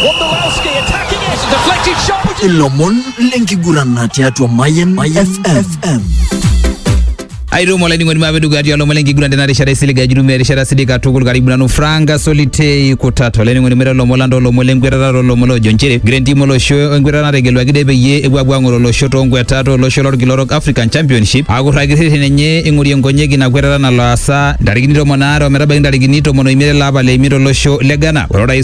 Wondolowski attacking it. Deflected shot. ilomon lenkigurana tiatua mayen fm aitumo olainining'oni maape dukuya tialo olomon lenkiguran tena rishata isilig ajitumia erishata sidai katukul karibu nanu franka solitei kutata olainining'oni mira olomon landa olomon lenkwetata olomon loojo nchere green team olosho enkwetata nategeluaki de peyie epuo apuo ang'or olosho toonkwetata olosho lorkila orok african championship akurraki rreten enye ing'orie nkonyek ina kwetata nalo aasa ntarikini tomon aare ometabaiki ntarikini tomon oimiet ele apa le imiet olosho le ghana ore orais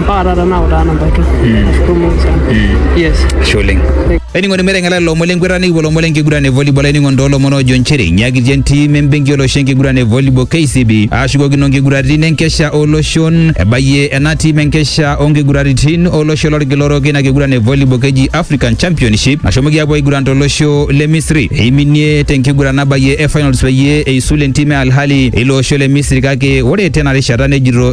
mpaka taata nautaa namba tu tumoki sana yes Ashe oleng. Ainining'oni meteng'ela lelo omon lenkwetata nikipuo lomon lenkiguran e volleyball ainining'oni too lomon oojo nchere inyiakitia entim embenki olosho enkiguran e volleyball KCB aashukokino nkiguraritin enkesha oloshon ebayie ena tim enkesha oonkiguraritin olosho lorkila orok ina kiguran e volleyball keji African Championship nashomoki aapuo aiguran tolosho le Misri eiminie tenkiguran nabayie e finals peyie eisul entim e Al Ahly eilo osho le Misri kake ore tena rishata nejito